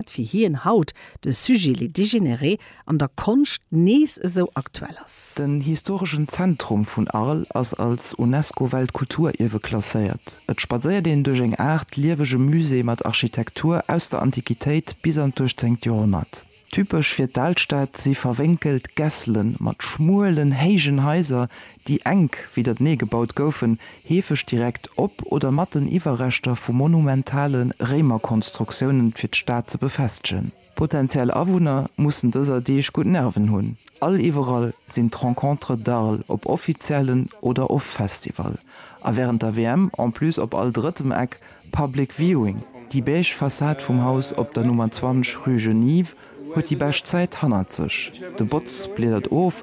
wat fir hien haut de Sujet les dégénérés an der Konscht nees esou aktuell ass. Den historeschen Zentrum vun Arles ass als UNESCO-Weltkulturierwe klasséiert. Et spadséiert een duerch eng Aart liewege Musée mat Architektur aus der Antiquitéit bis an d'uechtzéngt Joerhonnert. Typesch fir d'Alstad si verwénkelt Gässele mat schmuelen, héijen Haiser, déi enk widdertenee gebaut goufen, heefeg direkt op oder mat den Iwwerreschter vu monumentale Réimerkonstruktiounen, fir d'Stad ze befestegen. D'potenziell Awunner mussen dëser Deeg gutt Nerven hunn, all iwwerall sinn d'Rencontres d'Arles, op offiziellen oder off Festival, a wärend der WM en plus op all drëttem Eck Public Viewing. Déi beige Fassad vum Haus op der Nummer 20 rue Genive huet déi bescht Zäit hannert sech, de Botz bliedert of,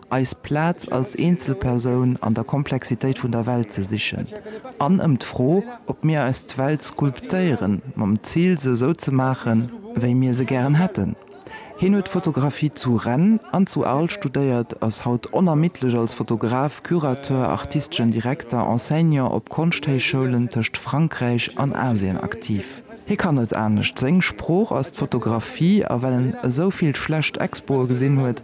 eis Plaz als Eenzelpersoun an der Komplexitéit vun der Welt ze sichen an ëm d'Fro, ob mir eis d'Welt skulptéieren, mam Zil se esou ze maachen, wéi mir se gären hätten. Hien huet Fotografie zu Rennes an zu Arles studéiert, ass haut onermiddlech als Fotograf, Curateur, artisteschen Direkter, Enseignant op Konschthéichschoulen tëscht Frankräich an Asien aktiv. Hie kann net anescht, seng Sprooch ass d'Fotografie a well en esou vill schlecht Expoe gesinn huet,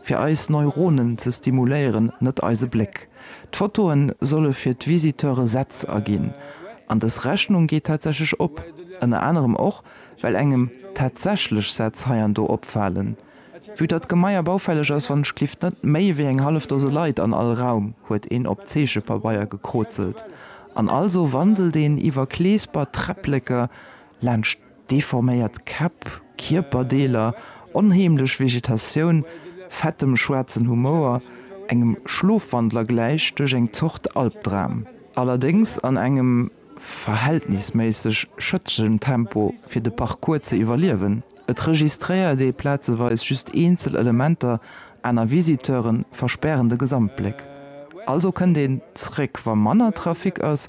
fir eis Neuronen ze stimuléieren, net eise Bléck. D'Fotoe solle fir d'Visiteure Sätz erginn. An dës Rechnung geet tatsächlech op, ënner anerem och, well engem tatsächlech Sätz hei an do opfalen. Vue datt d'Gemaier baufälleg ass, wann ech gelift net méi wéi eng hallef Dose Leit an all Raum, huet een op Zeechepabeier gekrozelt an also wandelt een iwwer Kleesper, Träppleker laanscht. Deforméiert Käpp, Kierperdeeler, onheemlech Vegetatioun, fettem schwaarzen Humouer, engem Schlofwandler gläich duerch eng Zort Albdram. Allerdéngs an engem verhältnisméisseg schëttegen Tempo fir de Parcours ze iwwerliewen. Et registréiert ee plazeweis just eenzel Elementer, aner Visiteure verspären de Gesamtbléck. Also kënnt een zréck wa manner Trafic ass.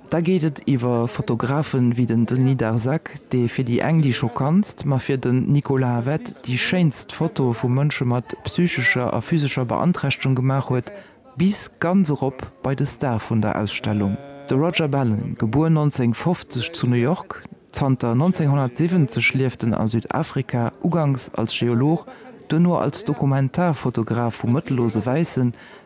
Da geet et iwwer Fotografen wéi den Denis Darzac, dee fir déi eng déi schockantst, ma fir den Nicolas Havet déi schéinst Fotoe vu Mënsche mat psychescher a physescher Beanträchtegung gemaach huet, bis ganz erop bei de Star vun der Ausstellung. De Roger Ballen, gebuer 1950 zu New York, zanter 1970 lieft en a Südafrika, uganks als Geolog, duerno als Dokumentarfotograf vu mëttellose Wäissen,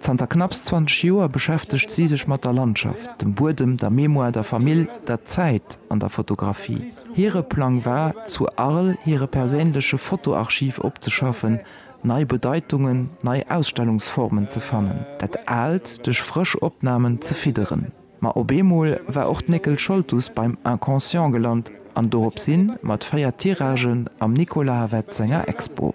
Zanter knapps 20 Joer beschäftegt si sech mat der Landschaft, dem Buedem, der Mémoire, der Famill, der Zäit an der Fotografie. Hire Plang war, zu Arles hire perséinleche Fotoarchiv opzeschaffen, nei Bedeitungen, nei Ausstellungsformen ze fannen, dat Aalt duerch frësch Opnamen ze fidderen. Ma op eemol war och d'Néckel Scholtus beim Inconscient gelant an dorops hin mat véier Tiragen am Nicolas Havet senger Expo.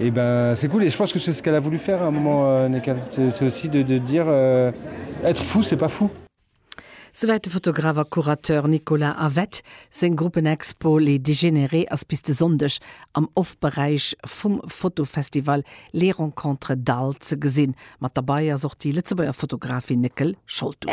Eh ben c'est cool et je pense que c'est ce qu'elle a voulu faire à un moment n'est qu'elle c'est aussi de de dire être fou c'est pas fou. Souwäit de Fotograf a Curateur Nicolas Havet. Seng Gruppenexpo Les Dégénérés ass bis de Sonndeg am Off-Beräich vum Fotofestival Les Rencontres d'Arles ze gesinn. Mat derbei ass och déi Lëtzebuerger Fotografin Néckel Scholtus.